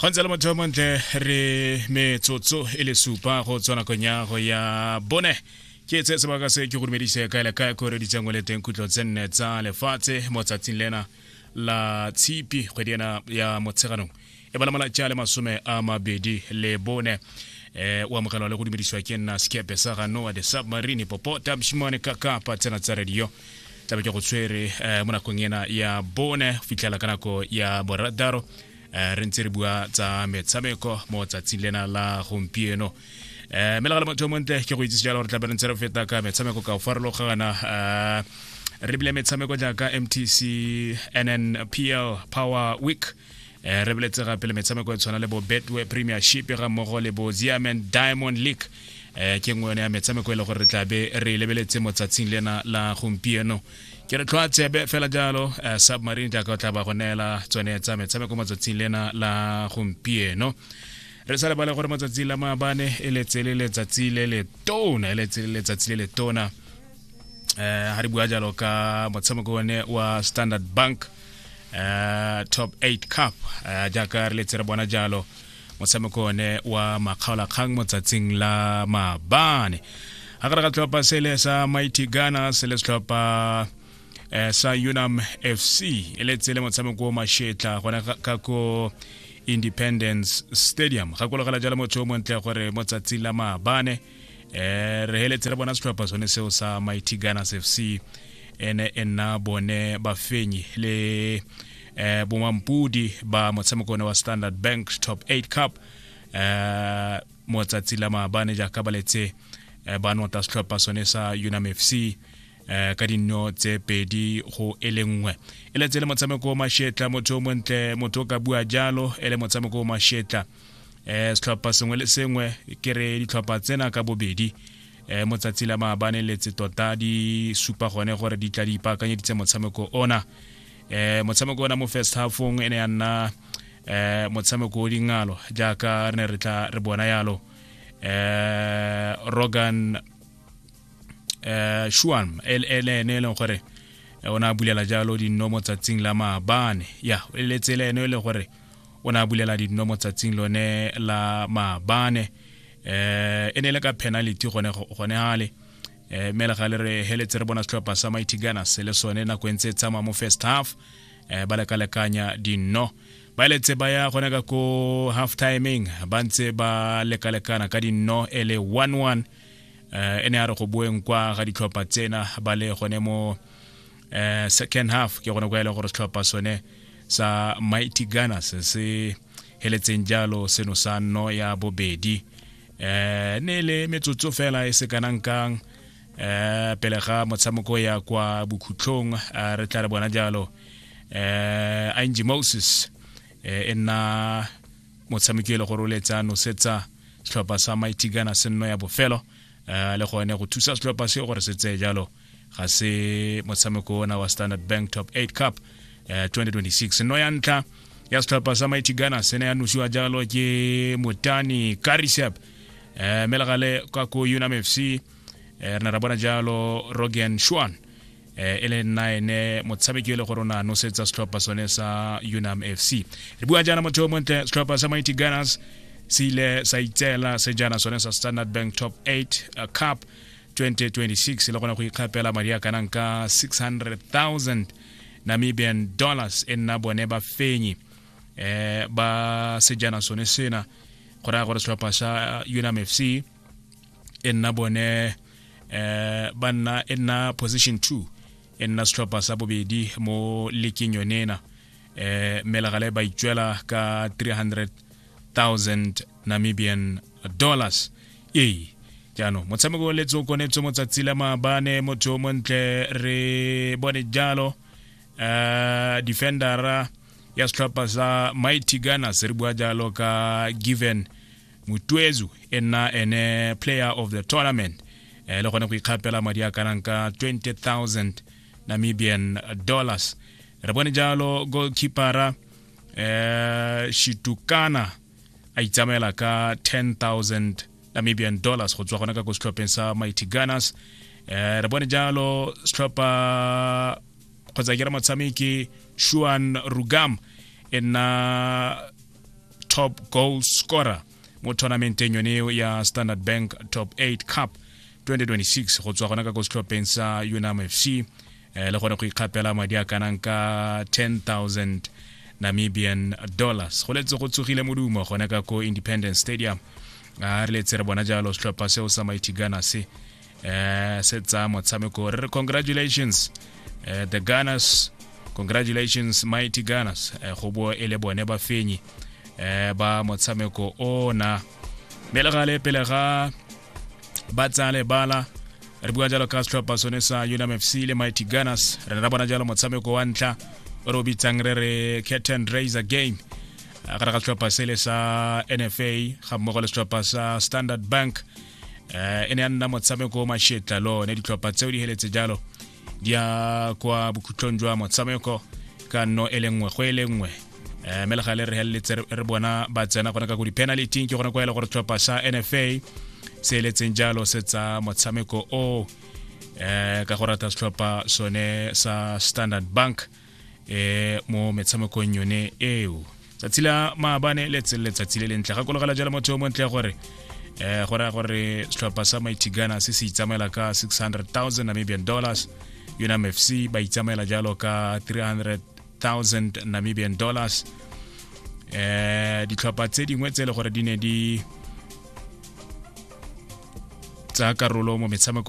go ntse le motho yo montle re metsotso e le supa go tswa nakong ya go ya bone ke tse sebaka se ke go dumedise kae le kae ko reditseng o le teng khutlo tse nne tsa lefatshe mo tsatsing lena la tshipi kgwedi ena ya motsheganong e bala malatsi a le masome a mabedi le bone eh o amogelwa le go dumedisiwa ke nna sekepe sa ga noa the submarine popo tabshimane ka kapa tsena tsa radio tlabe ke go tshwere eh, mo nakong ena ya bone fitlhela ka nako ya boradaro eh, re ntse re bua tsa metshameko mo tsatsing lena la gompieno eh mme legale motho o montle ke go itsise jalo gore tlabe re ntse re feta ka metshameko ka go farologana eh re bile metshameko jaaka mtc nnpl power week eh, re boletse gape le metshameko e tshwana le bo betway premiership ga mmogo le bo ziaman diamond league eh, ke nngwe yone ya metshameko e le gore re tlabe re e lebeletse mo tsatsing lena la gompieno ke re tlhoa tsebe fela jalo eh, submarine jaaka o tla ba go neela tsone tsa metshameko mo tsatsing lena la gompieno re sa lebale gore matsatsi la maabane e letse le letsatsi le le tona e letse le letsatsi le le tona um eh, ga re bua jalo ka motshameko one wa standard bank uh, top 8 cup uh, jaaka re letse re bona jalo motshameko one wa makgaolakgang mo tsatsing la mabane ga gare ga tlhopha sele sa mighty ghana se le setlhopha eh, sa unam fc e le tsele motshameko o mashetla gona ka ko independence stadium gakologela jalo motho o montle gore mo tsatsi la maabane eh re heletse re bona setlhopha sone seo sa mighty gunners f c ene e nna bone bafenyi le eh bomampudi ba motshameko one wa standard bank top 8 cup eh mo tsatsi la maabane jaaka ba letse eh, ba nota setlhopha sone sa unam f c eh ka dinno tse pedi go e le nngwe e letse le motshameko o mashetla motho o montle motho o ka bua jalo e le motshameko o mashetla eh setlhopha sengwe le sengwe ke re ditlhopha tsena ka bobedi eh mo tsatsi la maabane letse tota di supa gone gore di tla di ipaakanyeditse motshameko ona eh motshameko ona mo first halfong e ne ya nna eh motshameko o dingalo jaaka re ne re tla re bona yalo eh rogan eh shuan e e le ene e leng gore eh, o ne a bulela jalo dinno mo tsatsing la maabane ya e letse le ene e le gore o ne a bulela dino mo tsatsing lone la maabane um e ne e le ka penalty gone gale um mme le ga le re heletse re bona setlhopha sa mighty gunners le sone nako e ntse e tsamaya mo first half um ba lekalekanya dino ba eletse ba ya gone ka ko half timing ba ntse ba lekalekana ka dino e le one one um e ne a re go boeng kwa ga ditlhopha tsena ba le gone mo uh, second half ke gone kwa e le gore setlhopha sone sa mighty gunners se heletseng jalo seno sa nno ya bobedi eh ne le metsotso fela e se kanang kang eh pele ga motshameko ya kwa bokhutlhong eh, re tla re bona jalo eh Angie Moses eh, e nna motshameki e le gore o letsa nosetsa setlhopha sa Mighty Gunner se nno ya bofelo eh, le gone go thusa setlhopha se gore se tseye jalo ga se motshameko ona wa standard bank top 8 cup eh, 2026 no ya ntlha ya setlhopha sa mighty ghana se ne ya nosiwa jalo ke motani karisep eh, mme legale kwa ko unam fc eh, re ne ra bona jalo rogan shuan eh, e le nna ene motshameki e le gore o ne a nosetsa setlhopha sone sa unam fc re bua jaana motho o montle setlhopha sa mighty gunners se ile sa itseela sejana sone sa standard bank top 8 uh, cup 2026 le kgona go ikgapela madi a kanang ka 600000 namibian dollars e nna bone ba fenyi eh ba sejana sone sena go raya gore setlhopha sa unam fc e nna bone eh ba nna e nna position 2 e nna setlhopha sa bobedi mo leking yonena eh melegale ba itswela ka 300000 namibian dollars ee jaanong motshameko wa letso konetso motsatsi la maabane motho yo montle re bone jalo uh, defendera ya setlhopha sa mighty gunners re bua jalo ka given mutuezu e nna ene player of the tournament eh, le gone go ikgapela madi a kanang ka 20000 namibian dollars re bone jalo goalkeepera eh, shitukana a itsamaela ka 10000 namibian dollars go tswa gona ka ko setlhopheng sa mighty gunners eh re bone jalo setlhopha kgotsa ke re motshameki shuan rugam e nna top goal scorer mo tournamenteng yone eo ya standard bank top 8 cup 2026 go tswa gona ka ko setlhopheng sa unam fc eh, le gone go ikgapela madi a kanang ka 10000 namibian dollars go letse go tsogile modumo gone ka ko independence stadium a re letse re bona jalo setlhopha seo sa mighty ghana se um se tsa motshameko re re congratulations uh, the gunners congratulations mighty gunners uh, go bo e le bone bafenyi um ba motshameko ona mme le gale pele ga ba tsaya lebala re bua jalo ka setlhopha sone sa unmfc le mighty gunners re ne ra bona jalo motshameko wa ntlha o re o bitsang re re curtain raiser game ka ra ka setlhopha sele sa nfa ga mmogo le setlhopha sa standard bank um e ne ya nna motshameko o mashetla le one ditlhopha tseo di heletse jalo di ya kwa bokhutlong jwa motshameko ka nno e le nngwe go e le nngwe um mme le ga le re heleletse re bona ba tsena gone ka ko di-penality ke gone kwa e le gore tlhopha sa nfa se eletseng jalo se tsa motshameko o um ka go rata setlhopha sone sa standard bank eh mo metshamekong yone eo tsatsi la maabane le tsele letsatsi le lentle gakologela jalo motho yo montle gore eh go raya gore setlhopha sa mighty ghana se se itsamaela ka 600000 namibian dollars unam fc ba itsamaela jalo ka 300000 namibian dollars eh ditlhopha tse dingwe tse e le gore di ne di tsa karolo mo metshameko